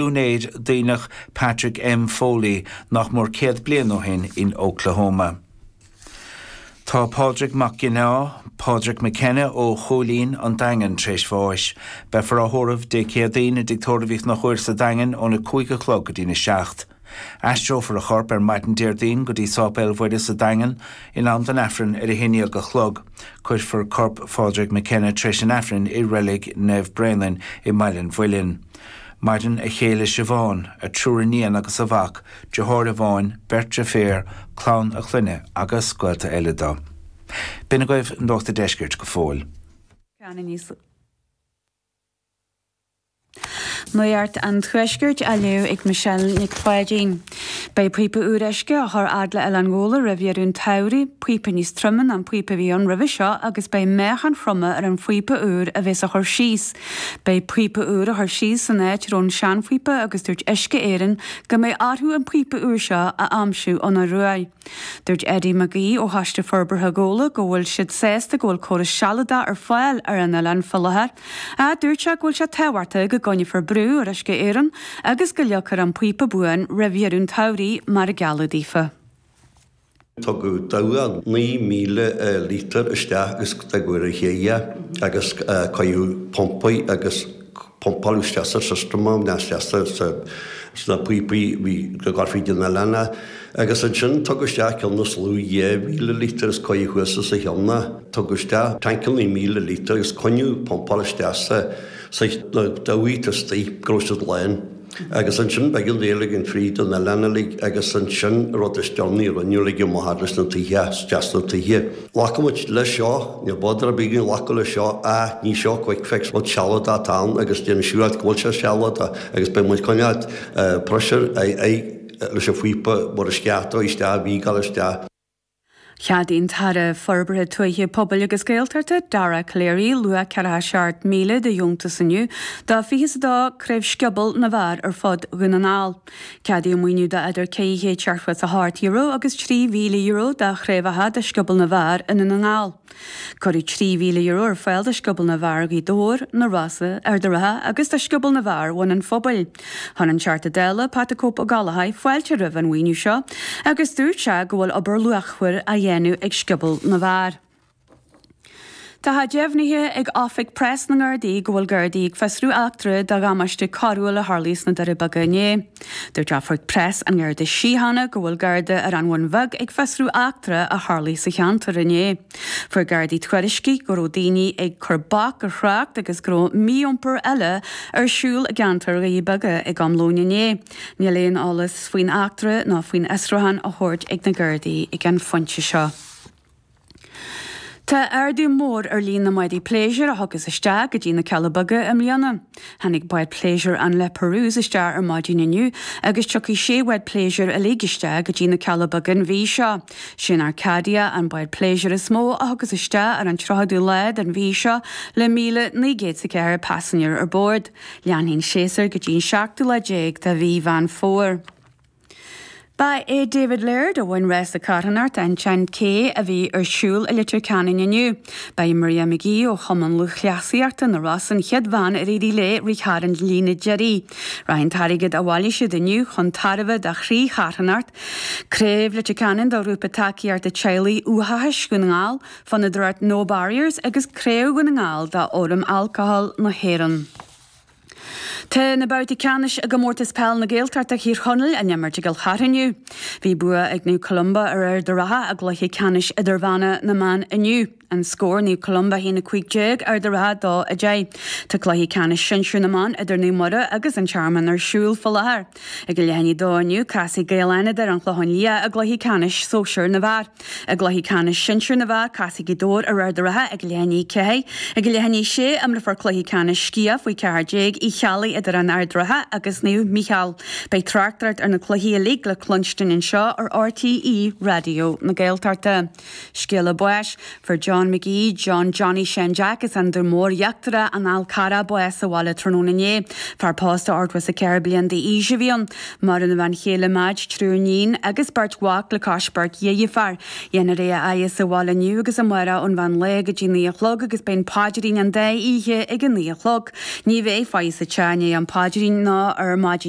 úinéir Duibhneach Patrick M. Foley nach mór céad bliain ó shin in Oklahoma. Tá Pádraig Mac Ginneá, Pádraig McKenna ó Chúilín, an Daingean, tar éis bháis. Beifear á thórramh Dé Céadaoin i dTigh Tórraimh Uí Chonchúir sa Daingean óna cúig a chlog go dtí'n a seacht. Aistreofar a chorp ar maidin Déardaoin go dtí Sáipéal Mhuire sa Daingean in am don Aifreann ar a haon déag a chlog. Cuirfear corp Phádraig McKenna tar éis an Aifrinn i Reilig Naomh Bréanainn i mBaile an Mhuilinn. Maireann a chéile Siobhán, a thriúr iníon agus a mhac, deartháir amháin, beirt deirféar, clann a chlainne agus gaolta eile do. B'in agaibh Nuacht a' Deiscirt go fóill. Nuacht an Tuaiscirt á léamh ag Michelle Nic Pháidín. Beidh píopa úr uisce á chur fhad le Oileán Ghabhla roimh dheireadh an tsamhraidh, píopa níos troime ná an píopa a bhí ann roimhe seo agus beidh meáchain throma ar an phíopa úr a bheas á chur síos Beidh an píopa úr á chur síos san áit a raibh an seanphíopa agus dúirt Uisce Éireann go mbeidh orthu an píopa úr seo a aimsiú ón Ioruaidh. Dúirt Eddie McGee ó Choiste Forbartha Ghabhla go bhfuil siad sásta go bhfuil córas sealadach ar fáil ar an oileán fá láthair ach dúirt sé go bhfuil sé tábhachtach go gcoinneofar brú ar Uisce Éireann agus go leagfar an píopa buan roimh dheireadh an tsamhraidh mar a gealladh daofa. Tugadh dabhach 9,000 lítear isteach agus cuireadh ar an ché é agus cuireadh pumpa air agus pumpáil isteach sa system ann, isteach sna píopaí a bhí ag gabháil fríd an oileán é. Agus ansin tugadh isteach ceann níos lú, dhá mhíle lítear agus cuireadh thuas os a cheann é. Tugadh isteach tancannaí míle lítear agus coinníodh ag pumpáil isteach sa, na dabhaigh istoigh go rabh siad lán. Agus ansin beidh sé ag gabháil fríd an oileán uilig agus ansin, rud is deonaí, roinnfidh muid amuigh thart leis na toighthe, as deas na toighthe. Glacfaidh muid leis seo, níl bother ar bith againn glacadh leis seo, ah ní seo quick fix, rud sealadach atá ann agus déanamh siúráilte go bhfuil sé sealadach agus beidh muid coinneáil pressure, aghaidh, leis an phíopa mhór a sceartadh isteach, a mhígeáil isteach. Cheadaigh an tAire Forbartha Tuaithe, Pobail agus Gaeltachta, Dara Calleary, luach ceathracha seacht míle de dheontas inniu do fiche is a dó craobh scioból na bhfear ar fud Dhún na nGall. Ceadaíodh maoiniú do idir €500 is €8 agus €3,000 do chraobhacha de scioból na bhfear i nDún na nGall. Cuireadh €3,000 ar fáil do Scioból na bhFear Ghaoth Dobhair, na Rosa, Ard a' Rátha agus do Scioból na bhFear Bhun an Phobail. Chuir an Teachta Dála, Pat the Cope Ó Gallchóir, fáilte roimh an mhaoiniú seo agus dúirt sé go bhfuil obair luachmhar á dhéanamh ag Scioból na bhFear. Tá sé deimhnithe ag Oifig Preas na nGardaí go bhfuil Gardaí ag fiosrú eachtra de dhamáiste coiriúil a tharlaigh sna Doirí Beaga inné. Dúirt oifig preas an Gharda Síochána go bhfuil Garda ar an Bhun Bheag ag fiosrú eachtra a tharlaigh sa cheantar inné. Fuair Gardaí tuairiscí go raibh daoine ag cur bac ar thrácht agus go raibh mí-iompar eile ar siúl i gceantar Dhoirí Beaga ag am lóin inné. Níl aon eolas faoin eachtra ná faoin fhiosrúchán á thabhairt ag na Gardaí ag an phointe seo. Tá ardú mór ar líon na mbádaí pléisiúir a thiocfas isteach go dtí na Cealla Beaga i mbliana. Tháinig bád pléisiúir an La Perouse isteach ar maidin inniu agus tiocfaidh sé bhád pléisiúir uilig isteach go dtí na Cealla Beaga an mhí seo. Sé'n Arcadia an bád pléisiúir is mó a thiocfas isteach ar an 30ú lá den mhí seo le 1,904 paisinéir ar bord. Leanfaidh an séasúr go dtí an seachtú lá déag de mhí Mheán Fómhair. Ba é David Laird a bhain rása carthanachta an 10K a bhí ar siúl i Leitir Ceanainn inniu. Ba í Maria McGee ó Chumann Lúthchleasaíochta na Rosann an chéad bhean ar éirigh léi rith thar an líne deiridh. Rachaidh an t-airgead a bhailigh siad inniu chun tairbhe do thrí charthanacht, Craobh Leitir Ceanainn do Ghrúpa Tacaíochta Teaghlaigh Uathachais Dhún na nGall, Fondúireacht No Barriers agus Craobh Dhún na nGall d'Fhóram Alcóil na hÉireann. Tá na babhtaí ceannais i gComórtas Peile na Gaeltachta Thír Chonaill á n-imirt i gCill Chartha inniu. Bhí bua ag Naomh Columba ar Ard an Rátha i gcluiche ceannais idirmheánach na mban inniu. An scór, Naomh Columba 1 15 Ard an Rátha 2 10. Tá cluiche ceannais sinsir na mban idir Naomh Muire agus An Tearmann ar siúl faoi láthair. Ag a leath i ndiaidh a dó inniu, casfaidh Gaeil Fhánada ar An Chlochán Liath i gcluiche ceannais sóisir na bhfear. I gcluiche ceannais sinsir na bhfear, casfaidh Gaoth Dobhair ar Ard an Rátha ag a 4:30. Ag a 6:30, imreofar cluiche ceannais Sciath faoi cheathair déag Uí Cheallaigh idir An Ard an Rátha agus Naomh Mícheál. Beidh tráchtaireacht ar na cluichí uilig le cluinstin anseo ar RTÉ Raidió na Gaeltachta. Scéala báis, Fuair John McGee, John Johnny Sheáin Jeaic as an Dún Mór Íochtarach, an Fhál Carrach bás sa bhaile tráthnóna inné. Fear pósta 84 bliain d'aois a bhí ann. Maireann a bhean chéile Madge, triúr iníon agus beirt mhac le cois beirt deirfiúr. Déanfar é a fhaire sa bhaile inniu agus amárach ón mheán lae go dtí naoi a chlog agus beidh an paidrín an dá oíche ag a naoi a chlog. Ní bheidh faire sa teach i ndiaidh an phaidrín ná ar maidin.